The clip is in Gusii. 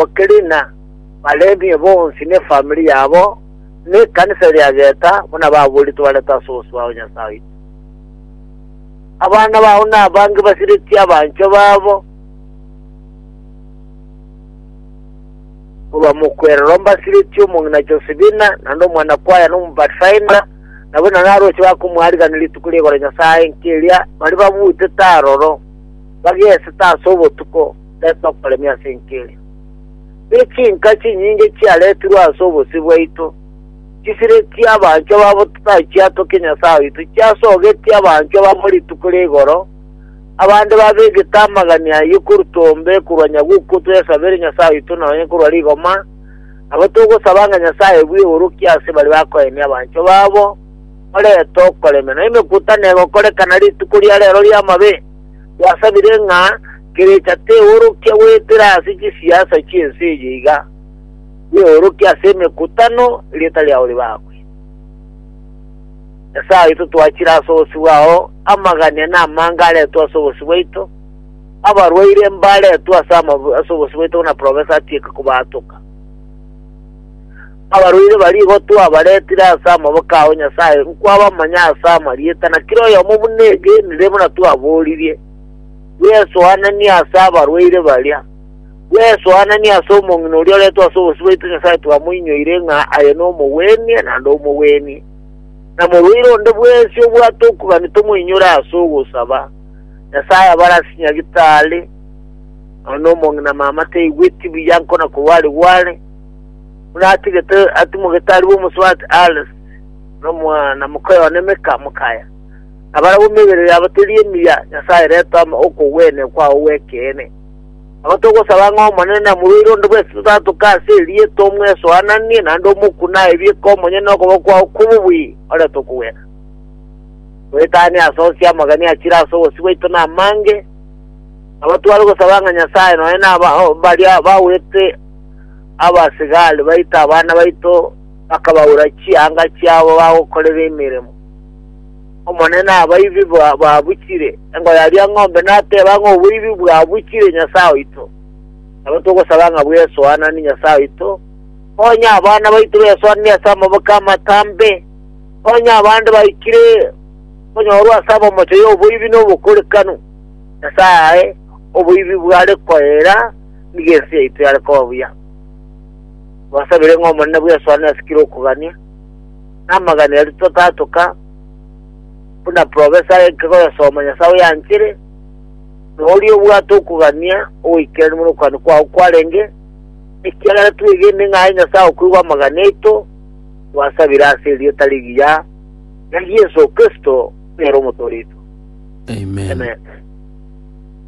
Bokelina, Balevi bonsi nefamiri yabo, nekanisa eria geta, buna baboritwe barente ase obosio bwao, Nyasae oito. Abana bao nabange basiretie abanchwa babo, korwa mokwerero mbasiretie omong'ina Josebina, naende omwana-kwaya na Omopathfinder, nabo na naroche bakomoariganera rituko ri'igoro Nyasae nkeria, baria babutete aroro, bagesete ase obotuko, tari nokoremia ase enkerio. Ne chinka chinyinge chiaretirwe ase obosio bwaito, chisire chi'abanchwa babo totachiatokia Nyasae oito, chiasogetie abanchwa bamo rituko ria igoro, abande babegete amagani ayio korutwa ombe korwa Nyaguku twesabere Nyasae oito nonye korwa rigoma, nabo togosaba ng'a Nyasae bw'eorokia ase baria bakoenia abanchwa babo, orete okoremia, na emekutanero egokorekana rituko ria rero ri'amabe. Twasabire ng'a kerecha teorokia goetera ase chisiasa chi'ense eye iga, bweorokia ase emekutano erieta riao ribakwe. Nyasae oito twachire ase obosio bwao, amagania na amanga aretwe ase obosio bwaito, abarwaire mbaretwe ase ase obosio bwaito buna Professor atieke kobaatoka. Abarwaire baria igo twabaretire ase amaboko ao Nyasae nkwabamanya ase amarieta, na kera oyomo buna egenire buna twaboririe. Bwesoananie ase abarwaire baria, bwesoananie ase omong'ina oria oretwe ase obosio bwaito Nyasae twamoinyoire ng'a aye nomogwenie naende omogwenie. Na morwaire onde bwensi obwate okogania tomoinyore ase ogosaba. Nyasae abare ase nyagitari, nonya omong'ina mama taigweti buya nkona korwa are gware, Buna atigete atimogete arue omosubati Ares, nomwana moka one Mika mokaya. Nabarabwo emebere yabo teri emiya, Nyasae retoma okogwenia kwao gw'ekeene. Nabo togosaba ng'a Omonene namoruere onde bw'esete otatoke ase erieta omwesoananie naende omokune aebieke omonyene nokoboko kwao kw'obobui, ore tokogwena. Toetanie ase onsi amagani achire ase obosio bwaito namange, nabo tware gosaba ng'a Nyasae nonya naba baria bagwete abasigari baito abana baito bakabaura chianga chiabo bagokorera emeremo. Omonene abaibi babuchire, engoya aria ng'ombe nateba ng'a oboibi bwabuchire Nyasae oito. Nabo togosaba ng'a bwesoananie Nyasae oito, onye abana baito besoanire ase amaboko amatambe, onye abande baikire konyorwa ase abamocho y'oboibi nobokorekanu, Nyasae ae oboibi bware koeera, Nigo ense yaito yare koba buya. Twasabire ng'a Omonene bw'esoani ase kera okogania, na amagani aria totatoka, buna profesa aike koyasoma Nyasae oyanchere, na oria obwate okogania ogoikerania buna okogania kwao kwarenge, ekiagera twegene ng'a aye Nyasae okoigwa amagani aito, twasabire ase erieta rigiya ria Yeso Kristo, ere Omotooria oito. Amen. Amen.